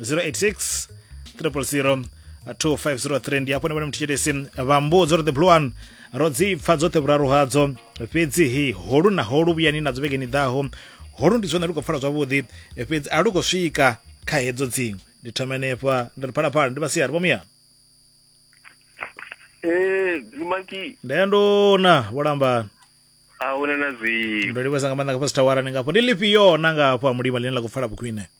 086 000 2503 ndi apo nipone muthichitisi vambudzo ri the blue one ro dzi pfa dzoṱhe vhuraru hadzo fhedzihi holu na holu vhuyani nadzo vhegeni ḓaho holu ndi zwone lu khou pfala zwavhuḓi fhedzi a lu khou swika kha hedzo dziṅwe ndi thoma henefha ndi ri phalaphala ndi vhasiari vhomuyana Eh, Zumaki, ndayandona vholambana ahuna na zwi. ndo livhesa nga maanḓa nga fhasi thawara ni ngafho ndi lifhio na ngafho a mulima ḽine ḽa khou pfala vhukhwine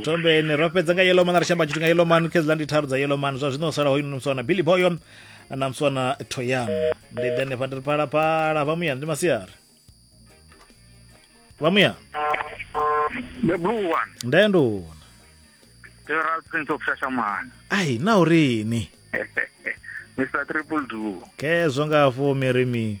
ntombeni ro fhedza nga yellow man ri shamba tshithu nga yellow man khezila ndi tharu dza yellow man zwa zwino sala hoyino mswana billy boyo na mswana toyam ndi ḓe nefha ndi ri phalaphala vha muya ndi masiari vha muya the blue one nde nduna the real prince of shashamana ai na urini mr triple do khezwo nga fumi ri mi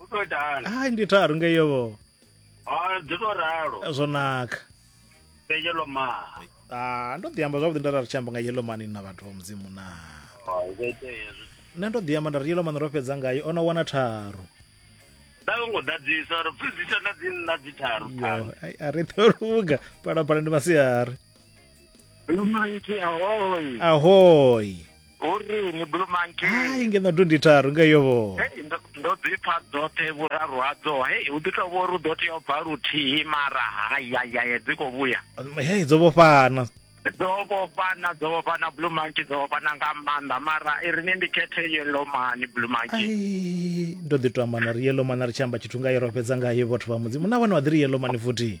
u to itahani hai ndi tharu ngeyo vho a dzi to ralo zwo naka fhe yellow man Ah, ndo ḓi amba zwavhuḓi nda ra ri tshi amba nga yellow man na vhathu vha mudzimu na o zwo itea hezwi nṋe ndo ḓi amba nda ri yellow man ro fhedza ngayo o no wana tharu nda yo ngo ḓadzisa uri pfizisa na dzi nna dzi tharu Yo, ai, a ri ḓo luga phalaphala ndi masiari Lumanti ahoy. ahoyi hu ri ni blue monkey hai nge na tundi tharu nga yo vho Hey, ndo- ndo ḓi pfa dzoṱhe vhuraru hadzo hei hu ḓi tou vho ri u ḓo tea u bva luthihi mara hayayaye dzi khou vhuya hei dzo vhofhana dzo vhofhana dzo vhofhana blue monkey dzo vhofhana nga maanḓa mara i ri ni ndi khethe yellow mani blue monkey ai ndo ḓi to amba na ri yellow man a ri tshi amba tshithu ngayo ro fhedza ngayo vhathu vha mudzimu na vhone vha ḓi ri yellow man futhi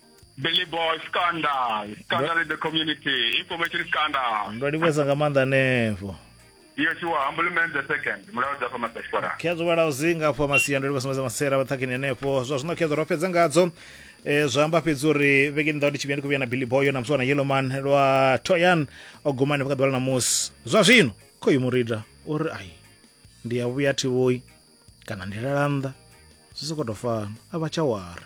Billy Boy Scandal. Scandal in the community. Information scandal. Ndo livhuwesa nga maanḓa hanefho. Yes, you are. Humble man the second. Mulayo dza fama Sashwara. Khedzo vhala uzinga afho masia ndo livhuwesa nga masera vhaṱhakhini hanefho. Zwa zwino khedzo ro fhedza ngadzo. Eh zwa amba fhedzi uri vhege nda ndi tshivhiya ndi kuvhiya na Billy Boy na mswana Yellowman lwa Toyan o guma ne vhakadwala na musi. Zwa zwino khoyu murida uri ai ndi ya vhuya thivhoyi kana ndi lalanda zwi soko to fana a vha tsha wara